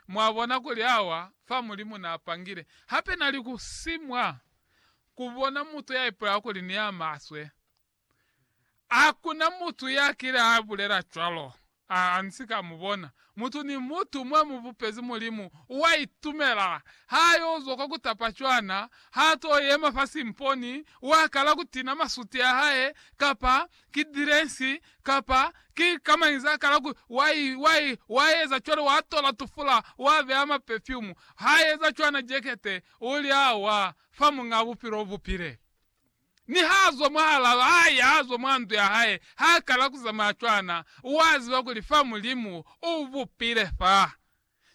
Mwabona kuli awa fa Mulimu na pangile. Hape na li ku si mwa ku bona mutu ya ipulelaho kuli ni ya maswe. Hakuna mutu ya kile a bulela cwalo, a, a ni si ka mu bona. Mutu ni mutu mwa mu bupezi Mulimu, wa itumela. Ha yo zwa kwa ku tapa cwana, ha to yema fa simponi, wa kala ku tina masuti a hae, kapa ki diresi, kapa ki kamaiza kala ku wa, wa, wa eza cwalo, wa tola tufula, wa beya mapefyumu, ha eza cwana jekete, u li, Awa, fa Muñ'a Bupilo ubupile. Ni ha zwa mwahalaa, ha ya, ha zwa mwa ndu ya hae, ha kala ku zamaya cwana, wa ziba kuli fa Mulimu u bupile fa.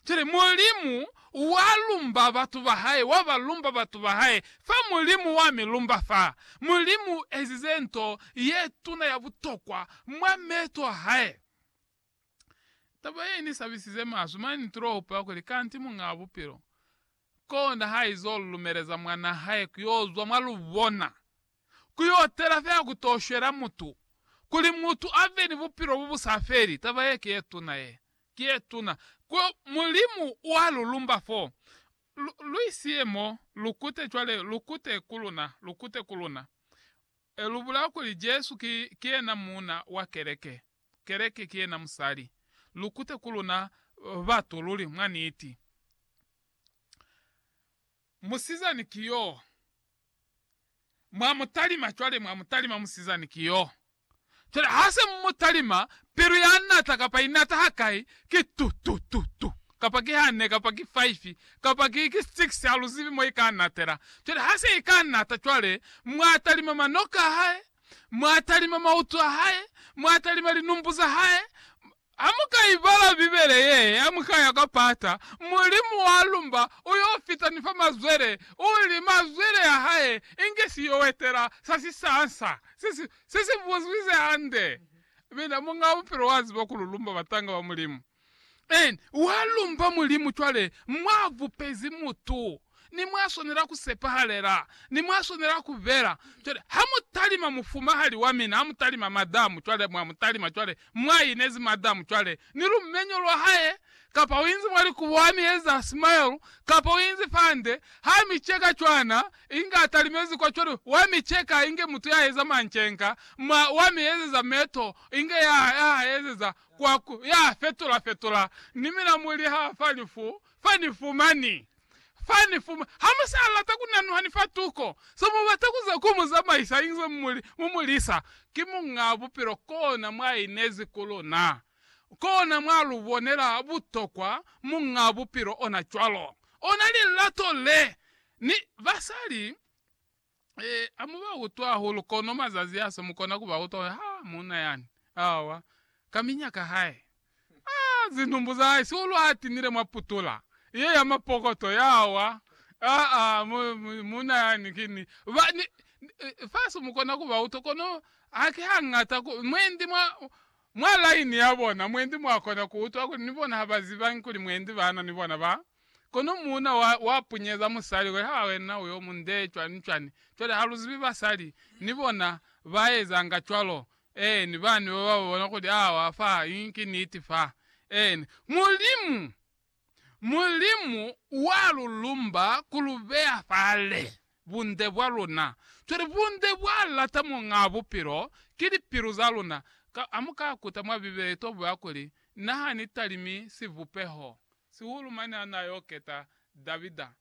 Cwale, Mulimu wa lumba batu ba Hae, wa ba lumba batu ba Hae, fa Mulimu wa mi lumba fa. Mulimu u ezize nto ye tuna ya butokwa mwa meto a Hae. Taba ye ni sabisize maswe, mane ni tula hupa kuli, Kanti Muñaa Bupilo, Kona haizo lumeleza mwana hae kuyozwa mwa lubona, kuyotela fela kutoshwela mutu, kuli mutu ave ni bupilo bobusafeli, taba ye kiyetuna ye. Kiyetuna. Ku, Mulimu wa lu lumba fo. Lu, lu isiye mo, lukute cwale, lukute ku luna, lukute ku luna. E lubula kuli Jesu ki, ki yena Muuna wa Keleke. Keleke ki yena musali. Lu kute ku luna batu luli, mwa niti. Musizani ki yo. Mwa mu talima cwale, mwa mu talima, musizani ki yo. Cwale ha se mu mu talima, pilu ya nata, kapa i nata hakai, ki tu, tu, tu, tu. Kapa ki hane, kapa ki faifi, kapa ki, ki six, ha lu zibi mo i ka natela. Cwale ha se i ka nata cwale, mwa talima manoka a hae, Mwa talima mautu a hae, mwa talima linumbu za hae. Ha mu ka ibala Bibele ye, ha mu ka ya kwa pata, Mulimu wa lumba u yo fita ni fa mazwele, u li, Mazwele a hae inge si yo etela sa sisansa se si, se si buzwize hande. Mina, Muñ'a Bupilo wa ziba kuli u lumba batanga ba Mulimu. En, wa lumba Mulimu cwale mwa bupezi mutu, ni mwa swanela ku sepahalela, ni mwa swanela ku bela. Cwale, ha mu talima mufumahali wa mina, ha mu talima madamu cwale, mwa mu talima cwale, mwa inezi madamu cwale, ni lumenyo lwa hae, kapa u inzi mwa likubo, ha mi eza smile, kapa u inzi fande, ha mi ceka cwana, inge a talimezi kwa cwale, wa mi ceka inge mutu ya eza mancenka, mwa, wa mi ezeza meto, inge ya, ya ha ezeza, kwa ku ya fetola-fetola ni milamu li ha fa li fu, fa ni fumani. Fa ni fuma, ha mu sa lata ku nanuha ni fa tuko, se mu bata ku za ku mu zamaisa inze mu li, mu mu lisa. Ki Muñaa Bupilo kona mwa inezi ku luna. Kona mwa lu bonela butokwa Muñaa Bupilo ona cwalo. Ona lilato le, ni basali. E, amu ba utwa hulu kono mazazi aso mukona ku ba utwa ha muuna yani. Awa. Ka minyaka hae. Ah, zinumbu za hae, sihulu ha tinile mwa putula ye ya mapokoto ya wa. Ah, ah, mu, mu, muuna yani kini. Ba, ni, faso mukona ku ba utwa kono haki hangata ku, mwendi mwa, mwa laini ya bona, mwendi mwa kona ku utwa kuli ni bona ha ba zibangi kuli mwendi bana ni bona ba. Kono muuna wa, wa punyeza musali we, ha wena uyo mu nde cwani-cwani. Cwale, ha lu zibi basali, ni bona, ba ezanga cwalo. Eeni, bani ba ba bona kuli, awa fa, i, ki niti fa. Eeni. Mulimu, Mulimu wa lu lumba ku lu beya fale, bunde bwa luna. Cwale, bunde bwa lata Muñaa Bupilo, ki lipilu za luna. Ka, amu ka kuta mwa Bibele to bwa kuli, Na ha ni talimi sivupeho Sihulu mane ha na yo keta Davida,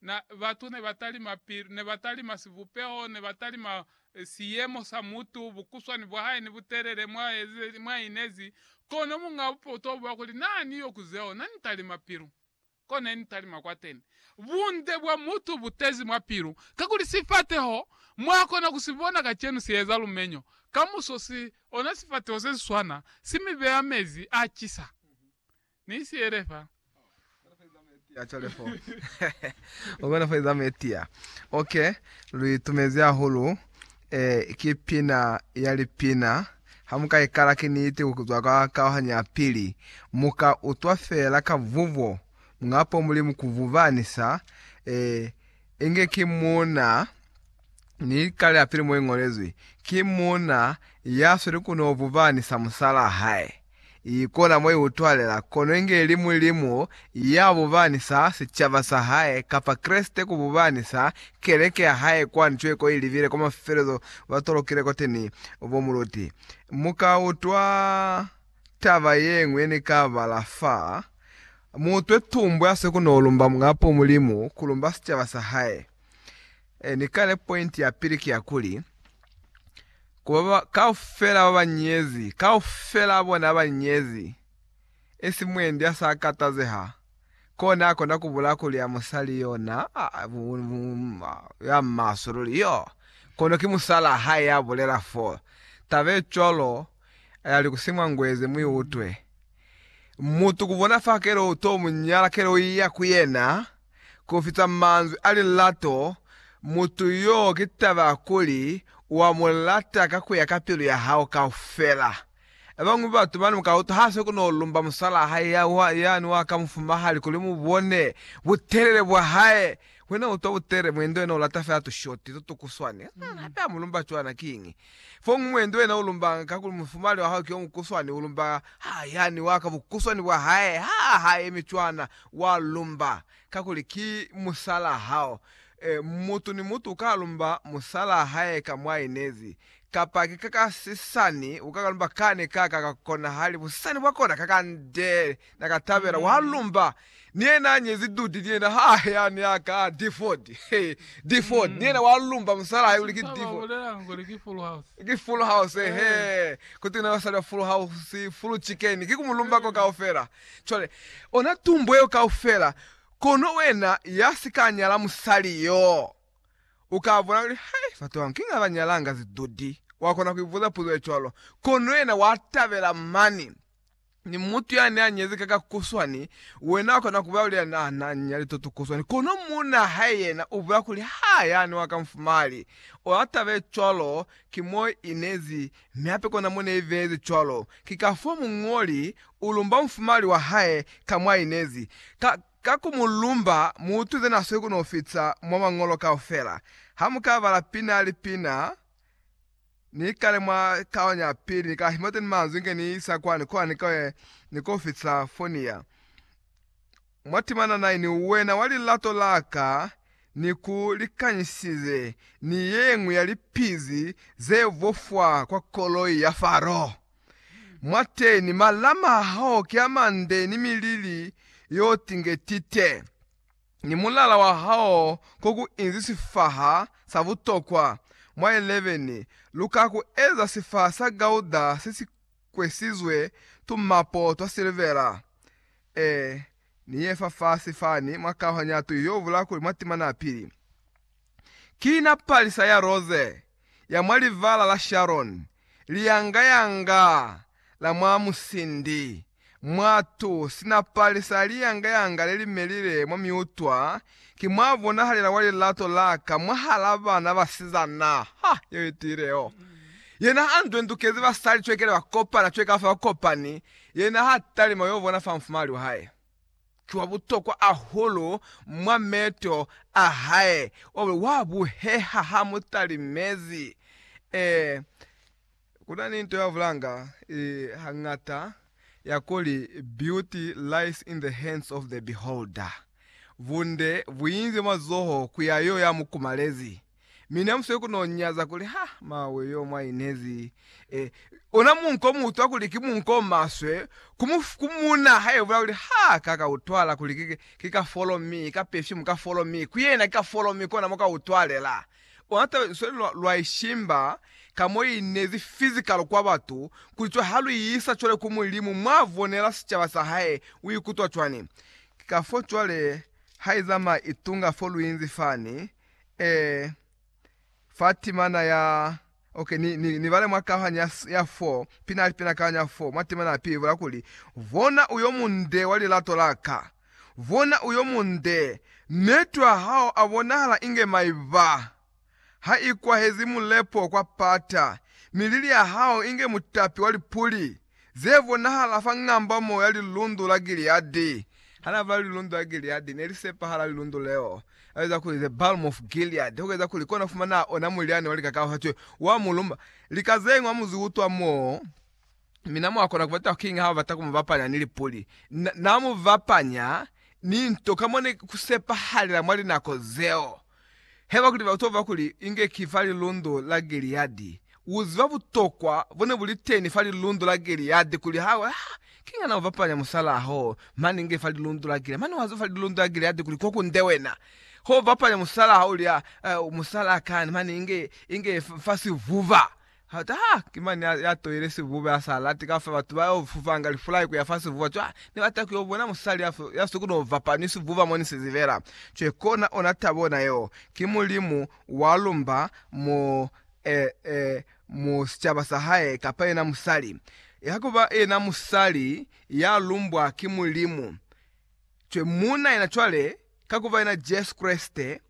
na, batu ne ba talima pilu, ne ba talima sibupeho, ne ba talima siyemo sa mutu, bukuswani bwa hae ni butelele mwa eze, mwa inezi. Kono munga bupoto bwa kuli, Na ni yo ku zeo, na ni talima pilu. Ko ne ni talima kwateni. Bunde bwa mutu bu tezi mwa pilu, kakuli sifateho, mwa kona ku si bona kacenu si eza lumenyo, kamuso si ona sifateho se si swana, si mi beya mezi a cisa. Ni siele fa. Ukona fa iza metia. Ok, lu itumezi ahulu. Eh, ki pina ya lipina. Ha muka ikala ki niti kuzwa kwa kauhanyo ya pili, muka utwa fela ka vuvo, Muñapo Mulimu ku vuba ni sa, eh, inge ki Muuna, ni kale ya pili mo ingolezwi, ki Muuna ya sweli kuno vuba ni sa musala hae. i kona mo i utwalela, kono inge ili Mulimu ya bubanisa sicaba sa hae, kapa Kreste ku bubanisa keleke ya hae kwani cweko i libile kwa mafelo zo ba tolokile kwateni bo muluti. Mu ka utwa taba ye ñwi ye ni ka bala fa, Mu utwe tumbu ya swe ku no lumba Muñapo Mulimu, ku lumba sicaba sa hae. E ni kale, pointi ya pili ki ya kuli, Ku ba ba kaufela ba ba nyezi, kaufela bona ba nyezi, esi mwendi ya sa katazeha, kona akona ku bula kuli a musali yo na, ya maswe luli yo, kono ki musalaa hae ya bulela fo. Taba ye cwalo ya li ku si mwa ngwezi, mu i utwe. Mutu ku bona fa kele u to mu nyala, kele u iya ku yena. kufita manzwi a lilato, mutu yo ki taba ya kuli wa mu lata ka kuya ka pilu ya hao kaufela. Bañwi batu bane muka utwa ha se kuno lumba musalaa hae ya wa, yani wa ka mufumahali kuli mu bone butelele bwa hae. Wena utwa butelele mwendo yena ulata fela tushoti tutukuswani. Hape amulumba cwana kiñi? Fomuñwi nduwena ulumbanga kakuli mufumali wahao ki omukuswani, ulumba ha yani waka bukuswani bwahae, ha hayemi cwana, wa lumba kakuli ki musalaa hao. E, mutu ni mutu uka lumba musalaa hae ka mwa inezi, kapa ki kaka sisani, ukaka lumba kani kaka ka kona hali busisani bwakona kaka nde naka tabela, wa lumba. Ni yena a nyezi Dudi, ni yena ha he a ne a ka Diford. He, Diford. Ni yena wa lumba musala hae kuli ki Diford. Ki Full House, he. Kutwi na basali ba Full House, Full Chicken. Ki ku mu lumba ko kaufela. Cwale, ona tumbo yeo kaufela. Kono wena ya si ka nyala musali yo, u ka bona kuli, Hei, batu banga, kiñi ha ba nyalanga zi Dudi? Wa kona ku ibuza puzo ye cwalo. Kono yena wa tabela mani. Ni mutu yani anyezi ka kakuswani, wena ukona kubulela kuli yani ananya lito tukuswani, kono muuna hae yena ubulela kuli, Ha yani wa kamfumali. Ona taba ye cwalo ki mo inezi, mi hape kona mo neibehezi cwalo. Ki kafoo muñoli ulumba mfumali wa hae ka mwa inezi. Ka, ka ku mu lumba, mutu zena asweli kuno fita mwa Mañolo kaufela. Ha mu ka bala pina li pina, Ni kale mwa kaonyo ya pili, ni kahi mateni manzwi inge ni isa kwani, kwani kwe ni ko fitisa Fonia. Mwa timana nai ni uwena wa lilato la ka, ni ku likanyisize ni yeñwi ya lipizi ze vofwa kwa koloi ya Faro. Mwateni, malama a hao ki a mande ni milili yo tingetite. ni mulala wa hao ko ku inzi sifaha sa butokwa mwa 11, lu ka ku eza sifaha sa gauda se si kwesizwe tumapo twa silivera. E ni ye fafasi fani mwa kauhanyatu yo bula kuli mwa timana ya pili, ki na palisa ya roze ya mwa Livala la Sharon, liyanga-yanga la mwa musindi, mwatu, sinapali sa liyanga-yanga le li melile mwa miutwa, ki mwa bonahalela wa lilato la ka mwahal'a bana basizana. Ha! Yeo i tiile yo! Yena a ndwendukezi basali cwekele ba kopana cwe ka fa ba kopani, yena ha talima yo bona fa mfumahali wa hae. ki wa butokwa hahulu mwa meto a hae, obe wa buheha ha mu talimezi. Ee, ku na ni nto ya bulanga i hañata ya kuli, Beauty lies in the hands of the beholder. Bunde bu inzwe mazoho ku ya yo ya mu kumalezi. Mi ne musweli ku no nyaza kuli, Ha, mawe, yo mwa inezi. E, ona munko o mu utwa kuli ki munko o maswe, ku mu, ku mu na haebula kuli, Ha, ka ka utwala kuli ki, ki ka folo mi, ka perfume ka folo mi, ku yena ki ka folo mi, kona mo ka utwalela. Ona taba lusweli lwa, lwa ishimba ka mo inezi physical kwa batu, kuli cwale ha lu isa cwale ku Mulimu, mwa vonela sicaba sa Hae, u ikutwa cwani? Ki kafo cwale ha i zamaya i tunga fo lu inzi fani, Ee, fa timana ya. Okay, ni, ni, ni bale mwa kaohanya ya, ya 4, pina ali pina kaohanya ya 4, mwa timana ya pili, ibula kuli, Bona uyo munde wa lilato la ka. Bona uyo munde, metwa hao abonahala inge maiba. Ha ikwahezi mulepo kwa pata, mi lili ya hao inge mutapi wa lipuli. ze bonahala fa ngambamo ya Lilundu la Gileadi. Ha na bala Lilundu la Gileadi, ne li sepahala lilundu leo la biza kuli The Balm of Gilead, ku eza kuli kona ku fumana ona mulyani wa lika ka fatwe wa muluma. Lika ze ñwi a mu zi utwa moo, mi na mwa kona ku bata kiñi ha ba bata ku mu bapanya ni lipuli? Na, na mu bapanya ni nto ka mo ne ku sepahalela mwa linako zeo. Haiba kuli batova kuli inge ki fa lilundo la Giliadi, uziba butokwa bone buliteni fa lilundo la Giliadi kuli ha we, ha ki ngana ubapanya musalaa ho mane inge fa lilundo la Giliadi, mane waziba fa lilundo la Giliadi kuli ko kunde wena, ho ubapanya musalaa ulya, musalaa kani mane inge, inge fa sivuba. Ha taha, ki mani ya, ya toile sivuba, ya sa lati kaufela batu ba yo fufanga lifulai ku ya fa sivuba. Cwale, ni bata ku yo bona musali ya, ya si koni ku vapa ni sivuba mo ni si zibela. Cwale kona ona tabo ona yeo. Ki Mulimu wa lumba mo, eh, eh, mu sicaba sa Hae, kapa yena musali. Ha ku ba yena musali ya lumbwa ki Mulimu. Cwale muuna yena cwale, ka ku ba yena Jesu Kreste,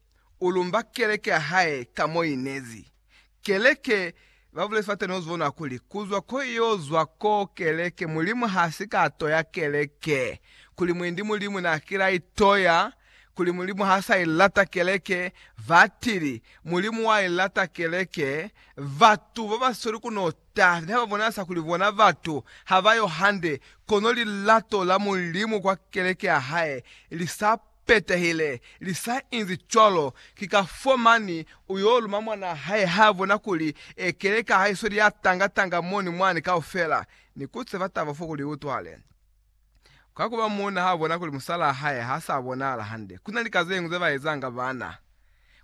u lumba Keleke ya Hae ka mo i nezi. Keleke, ba bulezi fa teni uzibona kuli kuzwa ko iyo zwa ko keleke, Mulimu ha si ka toya keleke, kuli mwendi Mulimu na kila i toya, kuli Mulimu ha sa i lata keleke, batili, Mulimu wa i lata keleke, batu ba ba sweli ku nota ne ha ba bonahasa kuli bona batu ha ba yo hande, kono lilato la Mulimu kwa keleke ya hae li sa petehile. Li sa inzi cwalo, ki ka fo mani u yo luma mwana hae ha bona kuli e keleka ha i sweli ya tanga tanga moni mwani kaufela, ni ku tseba taba fo kuli i utwale. Ka kuba muuna ha bona kuli musalaa hae ha sa bonahala hande, ku na lika ze ñwi ze ba ezanga bana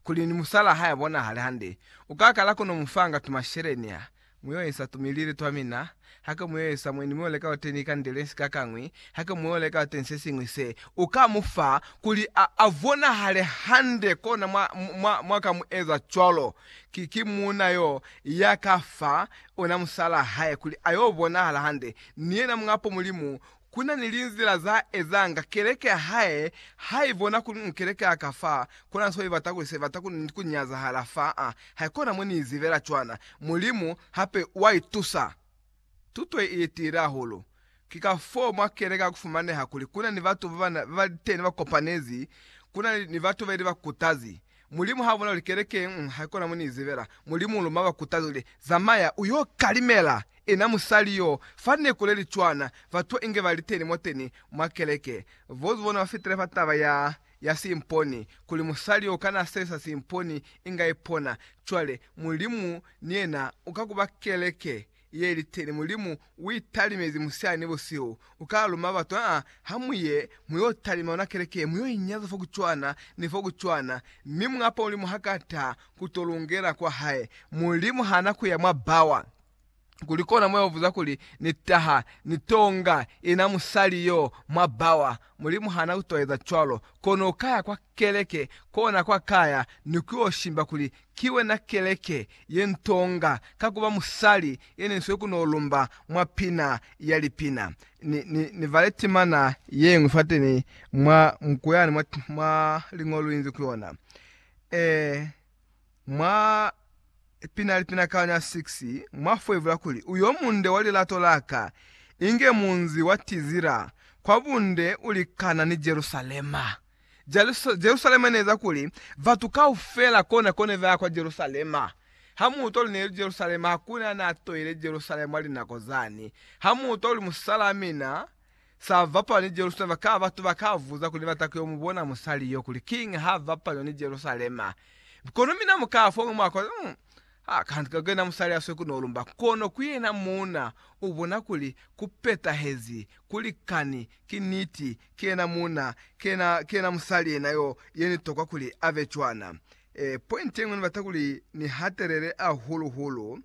kuli ni musalaa hae a bonahale hande, u ka kala ku no mu fanga tumasheleni a Muyoesa tumilili twamina, hake muyoesa mweni mi oleka oteni ikandele sikakangwi, hake muoleka oteni sesiñwi se uka mufa, kuli a avonahale hande, kona mwa, mwa, mwaka mueza cwalo. Ki, ki muuna yo yakafa, ona musalaa hae, kuli ayo bonahala hande, ni yena muñapo Mulimu Ku na ni linzila za ezanga keleke ya hae ha i bona kuli u keleke ya ka fa, ku na so i bata kuli se bata ku, ku nyazahala fa a. Haikona mo ni izibela cwana. Mulimu hape wa i tusa. Tuto ye i tiile hahulu. Ki ka foo mwa keleke ha ku fumaneha kuli ku na ni batu ba ba, ba liteni ba kopanezi, ku na ni batu ba ili ba kutazi. Mulimu ha bona kuli keleke haikona mo ni zibela, Mulimu luma ba kutaza kuli, Zamaya uyo kalimela ina musali yo fa neku le li cwana. Batu inge ba liteni mwateni mwa keleke, bozi bona ba fitile fa taba ya ya simponi, kuli musali yo kana asesa simponi inga ipona. Cwale Mulimu ni yena uka kuba keleke ye liteni Mulimu uitalimezi musihali ni busihu, ukala luma batu, aa, hamuye muyo talima yona keleke ye, muyo inyaza fo kucwana ni fo kucwana, mi mungapa Mulimu haka taha kuto lungela kwa Hae. Mulimu hana kuya mwa bawa. Kuli kona moyo vuza kuli, Ni taha, ni tonga ina musali yo mwa bawa? Mulimu hana kuto eza cwalo, kono ukaya kwa keleke, kona kwa kaya, ni kuyo shimba kuli Ki wena keleke ye ntonga ka kuba musali ye ne nswe ku no lumba mwa pina ya lipina. Ni, ni, ni vale timana yeñwi fate ni mwa muku yani mwa, mwa liñolo inzi ku yona. E, mwa pina ya lipina ka ya 6, mwa foivula kuli, Uyo munde wa lilato laka, inge munzi wa tizila, kwa bunde ulikana ni Jerusalema. Jerusalema ne eza kuli batu kaufela kona kone baya kwa Jerusalema. Ha mu utwa luli neli Jerusalema, hakuna ya na toile Jerusalema mwa linako zani. Ha mu utwa luli musalaa mina sa bapalwa ni Jerusalema, ka batu ba ka buza kuli ne bata kuyo mu bona musali yo kuli kiñi ha bapalwa ni Jerusalema. Kono mina mu ka fa uñwi mwako. Ha ka ka kena musali ya swe kuno lumba, kono ku yena muuna u bona kuli ku petahezi, ku likani, ki niti, ki yena muuna, ki yena, ki yena musali yena yo, ye ni tokwa kuli a be cwana. E, pointi yeñwi ni bata kuli ni hatelele ahulu hulu,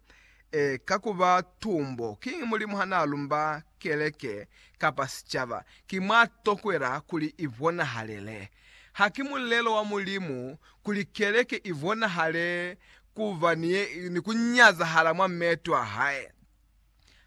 e, ka ku ba tumbo. Kiñi Mulimu ha na lumba keleke, kapa sicaba? Ki mwa tokwela kuli i bonahalele. Ha ki mulelo wa Mulimu kuli keleke i bonahale ku ba ni ku nyazahala mwa meeto a hae.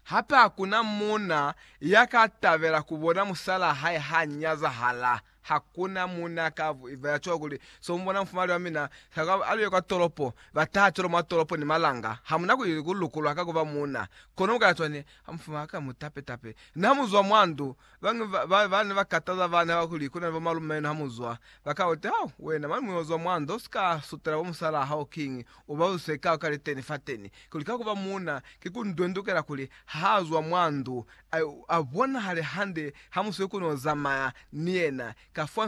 Hape hakuna muuna ya ka tabela ku bona musalaa hae ha nyazahala. Hakuna muuna ya ka ba ya cwalo kuli, So mu bona mufumali wa mina, sa ka ba, a luye kwa tolopo, ba taha cwalo mwa tolopo ni malanga. Ha mu na ku lukulwa ka ku ba muuna. Kono mu ka ya cwani, Ha mufumali wa ka mu tape-tape. Ni ha mu zwa mwa ndu, Bañwi ba bana ba kataza bana haba kuli, Kuna ni bomalume enu hamuzwa. Ba ka uta, Hau, wena mwa nimuya uzwa mwanda, usika sutela bo musalaa hao kiñi? Uba uzise ka ka liteni fateni. Kuli ka kuba muuna, ki ku ndwendukela kuli ha azwa mwa ndu, a, a bonahale hande hamusiwe ku no zamaya ni yena. Kafwani,